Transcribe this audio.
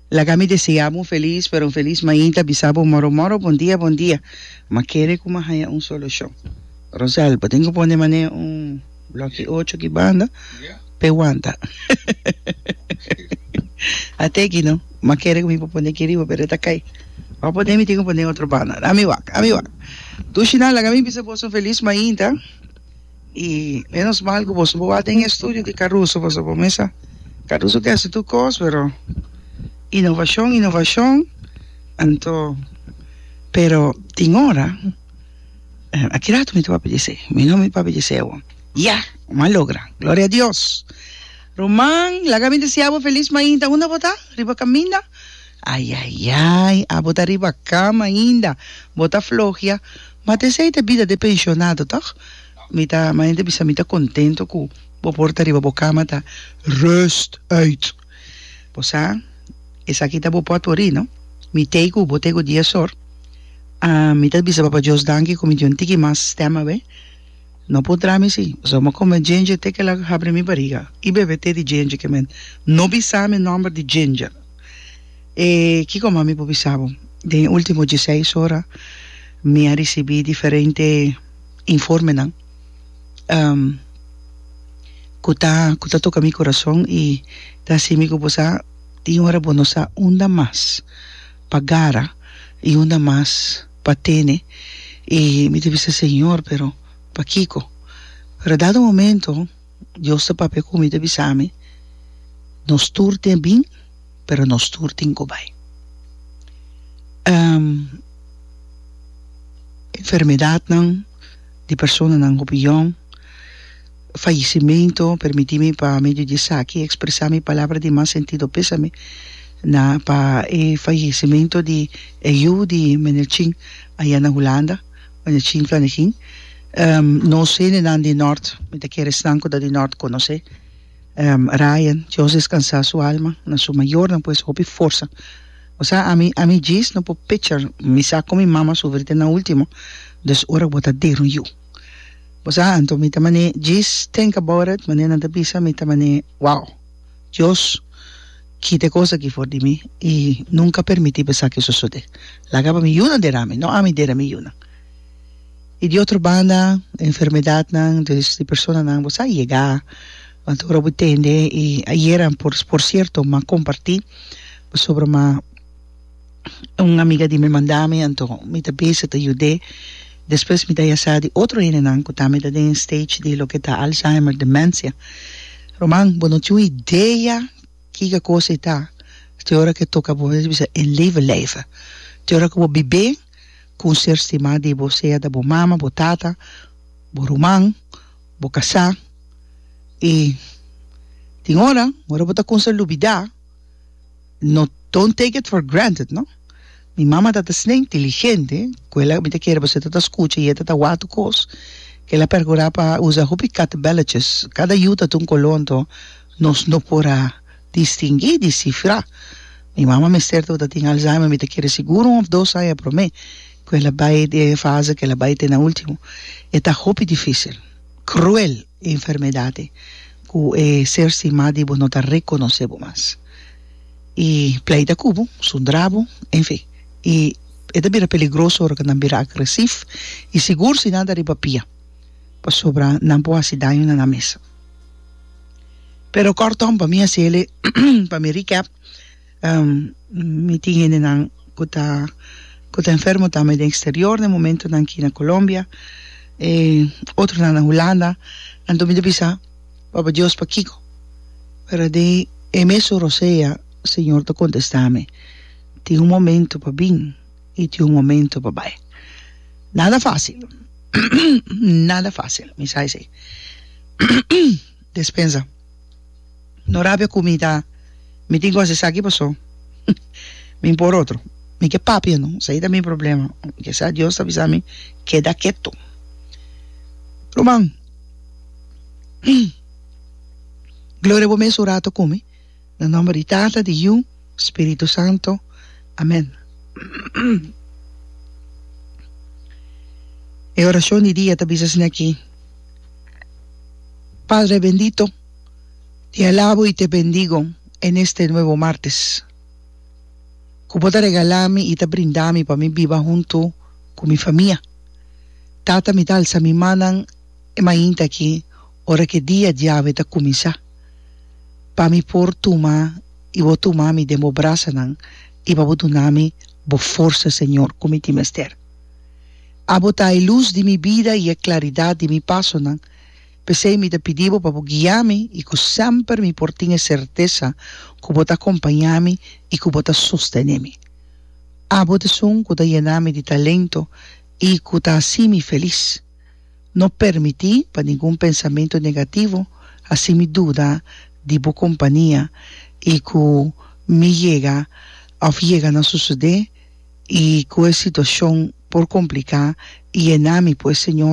Laga mi desea bo un feliz pero un feliz mainta bisa bo moro moro bon dia bon dia ma kere ku mi haña un solushon Rosel bo tin ku pone mane un bloki ocho ki banda pa e wanta a teki no ma kere ku mi por pone aki riba pero e ta kai pa pone mi tin ku pone otro banda ami wak ami wak Dushina laga mi bisa boso un feliz mainta. Y menos mal cu boso bo a den e estudio di Caruso, boso bo mesa, Caruso ke hasi tur cos, pero innovacion, innovacion, anto, pero tin ora, a ki rato mi ta papia di esey, mi no mi papia di esey awor, ya, mi a logra, gloria a Dios, ruman, laga mi desea bo feliz mainta, unda bo ta? Riba caminda? Ayayay, abo ta riba cama ainda, bo ta flohia. Ma te esei ta bida de pensionado toch? Mi ta ama hende bisa mi ta contento cu bo porta riba bo cama ta Rust uit! Bo sa esaki ta bo potvori no? Mi tei cu bo tego dies or. Ah, mi ta bisa Papa Dios danki cu mi tin un tiki mas stem awe. No por dra mi si. Bo sa bo m'a come ginger te kila habri mi bariga y bebe te di ginger ke men no bisa mi nomber di ginger. E kiko mas mi por bisa bo? Den e último diesseis ora mi a risibí diferente informenan ku ta ku ta toka mi kurason i ta hasi mi ku bo sa tin ora bo no sa unda mas pa gara i unda mas pa tene i mi ta bisa Señor pero pakiko? Pero dado momento Dios ta papia cu mi, ta bisa mi, Nos tur tin a bin, pero nos tur tin cu bai. Enfermedadnan di personanan hopi yòn, fallecimento, permiti mi pa medio di esaki expresa mi palabra di mas sentido pesame na pa e fallecimento di e yu di Menerchin aya na Hulanda. Ane chin kane kin no sende nan di nort mi ta kere esnan ku ta di nort konosé Ryan Dios deskansá su alma na su mayornan pues hopi forsa bo sa ami ami djis no por pichar mi sa kon mi mama sufri te na ultimo dus ora ku bo ta der un yu bo sa anto mi ta mane djis think about it mane nan ta bisa mi ta mane wow. Dios, kita e kos aki for di mi, i nunka permití pa esaki sosodé. Laga pa mi yunan dera mi, no ami dera mi yunan. I di otro banda, e enfermedatnan dus di personanan bo sa yega, want ora bo tende, i ayera por sierto m'a kompartí, pasobra m'a. un amiga di mi manda mi anto mi ta bese ta yud'é despues mi ta ya sa di otro hendenan ku tambe ta den stage di loke ta Alzheimer dementia ruman bo no tin un idea kiko kos e ta te ora ku e toka bo mes bisa en leven leve te ora ku bo bib'é ku un ser stima di bo sea ta bo mama bo tata bo ruman bo kasá i tin ora ora bo ta kumsa lubidá. No don't take it for granted no. Mi mama tata sne inteligente cu ela mi ta kere bo seta ta scucha y e ta ta wak tu cos cu ela a percura pa usa hopi katebelletjes. Cada yu ta tun color anto nos no por a distingui, descifra. Mi mama mester ta ta tin Alzheimer mi ta kere sigur un of dos aña prome cu ela bay den e fase cu ela bay te na ultimo. E ta hopi dificil, cruel. E enfermedadnan ku e ser sin mas di bo no ta rekonosé bo mas i pleita ku bo, sundrá bo, enfin i e ta bira peligroso ora ku nan bira agresif i sigur si nan ta riba pia pasobra nan por hasi daño na nan mes. Pero kòrtom pa mi hasi el'e pa mi recap. Mi tin hendenan ku ta ku ta enfermo tambe den eksterior den momentunan aki na Colombia e otronan na Hulanda anto mi ta bisa Papa Dios pakiko pero den e mes ora sea Señor ta kontesta mi tin un momento pa bin i tin un momento pa bai nada fácil nada fácil mi sa esei. Despensa. No rabia cu mi ta mi tin cu haci esaki paso mi mpor otro. Mi ke papia no esaki ta mi problema. Ke sa Dios ta bisa mi keda keto. Ruman Gloria bo mes un rato cu mi. Na nomber di Tata, di Yu, Spiritu Santo. Amen. E oracion di dia ta bisa asina aki, Padre bendito, te alabo y te bendigo en este nuevo martes cu bo ta regala mi y ta brinda mi pa mi biba hunto cu mi famia. Tata mi ta alza mi mannan e mainta aki, ora k'e dia diawe ta kuminsá, pa mi por tuma i bo tuma mi den bo brasanan i pa bo duna mi bo forsa, Señor, ku mi tin mester. Abo ta e lus di mi bida i e klaridat di mi pasonan, p'esei mi ta pidi bo pa bo guia mi i ku semper mi por tin e sertesa ku bo ta akompañá mi i ku bo ta sostené mi. Abo t'esun ku ta yena mi di talento i ku ta hasi mi felis. No permití pa ningun pensamentu negativo hasi mi duda di bo kompania i ku mi yega òf yega na susudé i ku e situashon por kompliká i e na mi, pues, Señor.